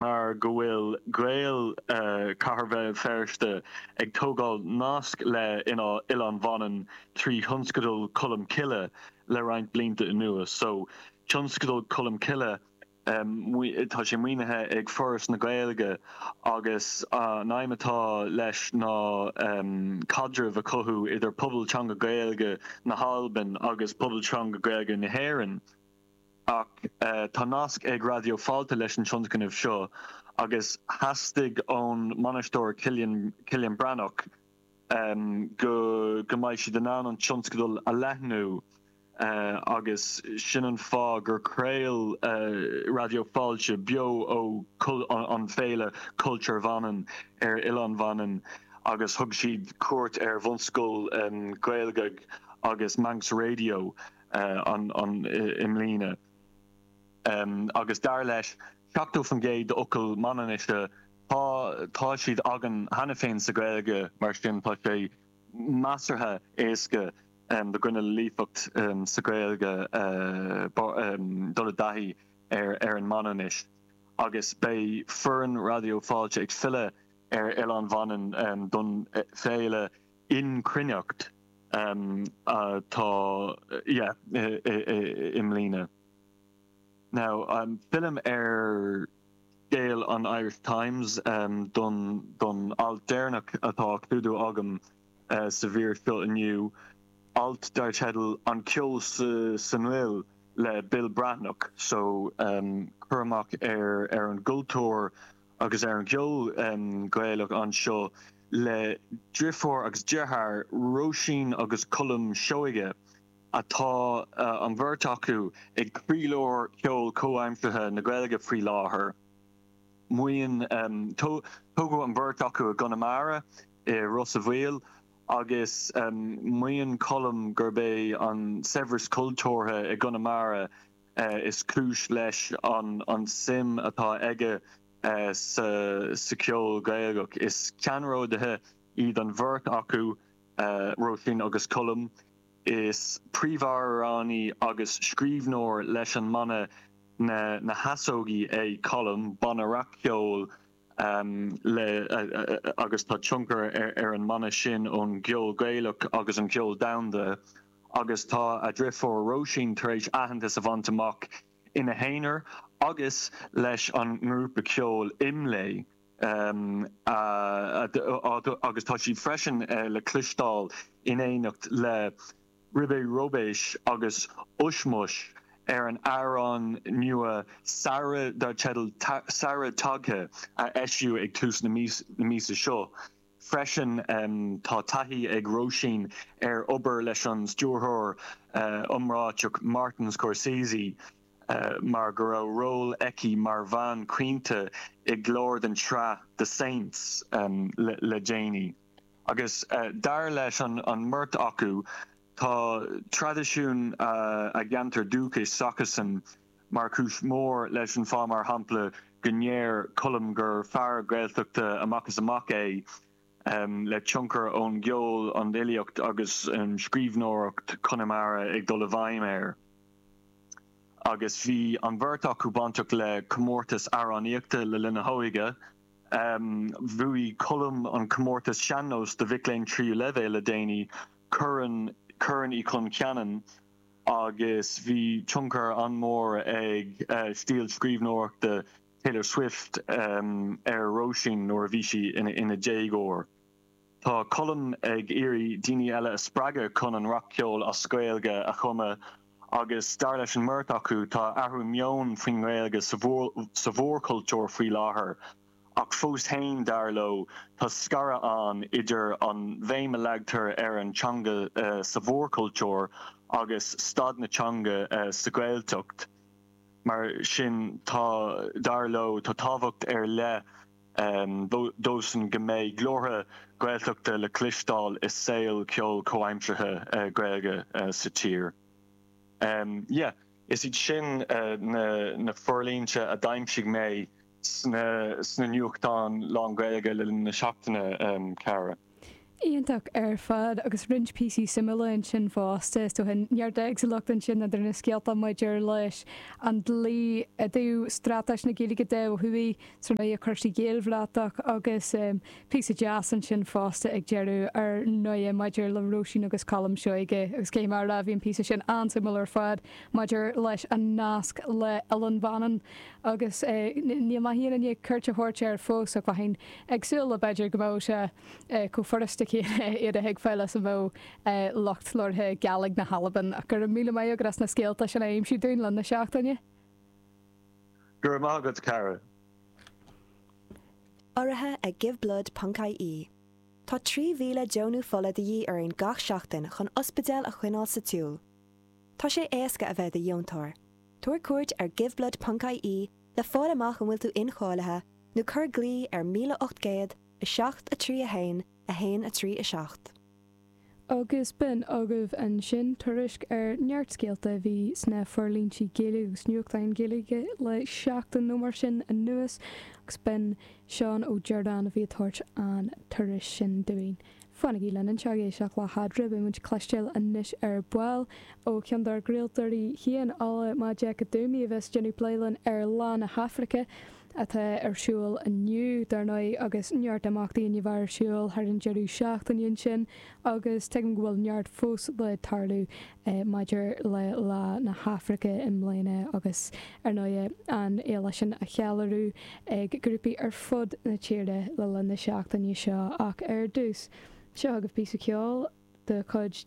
mar go bhfuil Gaeil Chathair Bhéal Feirste ag tógáil nasc le Oileán Mhanann trí Thionscadal Cholm Cille le roinnt blianta anuas. So Tionscadal Cholm Cille, tá sé maoinithe ag Foras na Gaeilge agus an aidhm atá leis ná caidreamh a chothú idir pobal teanga Gaeilge na hAlban agus pobal teanga Gaeilge na hÉireann. ach tá nasc ag Raidió Fáilte leis an tionscnamh seo agus theastaigh ón mbainisteoir Cillian Breathnach go go mbeidh siad in ann an tionscadal a leathnú agus sin an fáth gur chraol Raidió Fáilte beo ón Fhéile Culture Vannin ar Oileán Mhanann agus thug siad cuairt ar Bhunscoil Ghaelgagh agus Manx Radio i mbliana agus dar leis 70% d'fhocail Mhanainnise tá tá siad againn cheana féin sa Ghaeilge mar sin tá sé measartha éasca do dhuine le líofacht sa Ghaeilge dul i dtaithí ar ar an Manainnis agus beidh foireann Raidió Fáilte ag filleadh ar Oileán Mhanann don féile Yn Chruinnaght atá, yeah, i mbliana. Now, fillim ar scéal an Irish Times do don alt deireanach atá á clúdú agam sa mhír seo inniu, alt dar teideal 'An Ceol san Fhuil' le Bill Breathnach. So, cur amach ar an gcultúr agus ar an gceol Gaelach anseo le driofúr agus deartháir, Róisín agus Colm Seoighe, tá an bheirt acu ag croílár cheol comhaimseartha na Gaeilge faoi láthair. Maíonn Tógadh an bheirt acu i gConamara, i Ros a' Mhíl, agus maíonn Colm gurb é an saibhreas cultúrtha i gConamara, is cúis leis an suim atá aige sa cheol Gaelach. Is ceannródaithe iad an bheirt acu, Róisín agus Colm. Is príomhamhránaí agus scríbhneoir leis an mbanna Na hEasógaí é Colm, banna rac-cheoil, agus tá tionchar ar an mbanna sin ón gceol Gaelach agus an ceol domhanda. agus tá a dreifiúr Róisín tar éis aitheantas a bhaint amach ina haonar agus leis an ngrúpa ceoil Imlé agus tá sí freisin le cloisteáil in éineacht le Ribe Róibéis agus Ushmush ar an amhrán nua Samhraidh dar teideal 'Samhradh Tagtha' a eisíodh ag tús na míosa seo. freisin. Tá taithí ag Róisín ar obair leis an stiúrthóir iomráiteach Martin Scorsese mar go raibh ról aici mar bhean chaointe i gclár den tsraith The Saints le déanaí agus dar leis an mbeirt acu tá traidisiún a gceantar dúchais s'acusan mar chúis mhór leis an fáth, mar shampla, go ndeir Colm gur fear Gaeltachta amach is amach é, le tionchar ón gceol, an fhilíocht agus scríbhneoireacht Chonamara ag dul i bhfeidhm air. Agus bhí an bheirt acu bainteach le comórtais amhránaíochta le linn a hóige. Bhuaigh Colm an comórtas sean-nós do mhic léinn tríú leibhéal le déanaí, Corn Uí Chon Cheanainn, agus bhí tionchar an-mhór ag stíl scríbhneoireachta Taylor Swift ar Róisín nuair a bhí sí ina déagóir. Tá Colm ag iarraidh daoine eile a spreagadh chun an rapcheol as Gaeilge a chumadh agus, dar leis an mbeirt acu, tá athrú meoin faoin nGaeilge sa mhórchultúr faoi láthair. ach fós féin, dar leo, tá scaradh ann idir an bhéim a leagtar ar an teanga sa mhórchultúr agus staid na teanga sa Ghaeltacht. Mar sin tá, dar leo, tá tábhacht ar leith dósan go mbeidh glórtha Gaeltachta le cloisteáil i saol ceoil comhaimseartha Gaeilge sa tír. Is iad sin na forlínte a d'aimsigh mé. sna nuachtáin lánGhaeilge le linn na seachtaine, a chara. Iontach ar fad, agus roinnt píosaí suimiúla ansin fosta, is dócha. Neart éagsúlacht ansin idir na scéalta maidir leis an dlí i dtaobh Straitéis na Gaeilge de ó thuaidh, tré na cúrsaí Gaelbhratach agus píosa deas ansin fosta ag deireadh ar ndóighe maidir le Róisín agus Colm Seoighe agus cheap mé go raibh an píosa sin an-suimiúil ar fad maidir leis an nasc le Oileán Mhanann. agus níl mé i ndiaidh cuairt a thabhairt air fós ach bheinn ag súil b'fhéidir go mbeadh sé chomh furasta céanna iad a thuigbheáil is a bheadh lucht labhartha Gàidhlig na hAlban ach go raibh míle maith agat as na scéalta sin a aimsiú dúinn le linn na seachtaine. Go raibh maith agat, Karen. Urraithe ag Giveblood ponc ie. Tá 3,000 deonú fola de dhíth orainn gach seachtain chun ospidéil a choinneáil sa tsiúl. Tá sé éasca a bheith i do dheontóir. Tabhair cuairt ar giveblood.ie le fáil amach an bhfuil tú incháilithe nó cuir glao ar 1807 3:1, 1, 3, 7. Agus b'in agaibh ansin tuairisc ar neart scéalta a bhí sna forlíntí Gaeilge agus nuachtáin Ghaeilge le seachtain nó mar sin anuas agus b'in Seán Ó Direáin a bhí ag tabhairt an tuairisc sin dúinn. Fanaigí linn anseo ag éisteacht le Fada is Fairsing, beidh muid ag cloisteáil anois ar ball ó cheann dár gcraoltóirí féin, Ola Majekodunmi, a bheas ag déanamh plé linn ar Lá na hAfraice atá ar siúl inniu, dar ndóigh, agus neart imeachtaí a bhí ar siúl thar an deireadh seachtaine ansin agus tuigim go bhfuil neart fós le tarlú maidir le Lá na hAfraice i mbliana agus, ar ndóigh, an fhéile sin á ceiliúradh ag grúpaí ar fud na tíre le linn na seachtaine seo ach ar dtús, seo chugaibh píosa ceoil de chuid.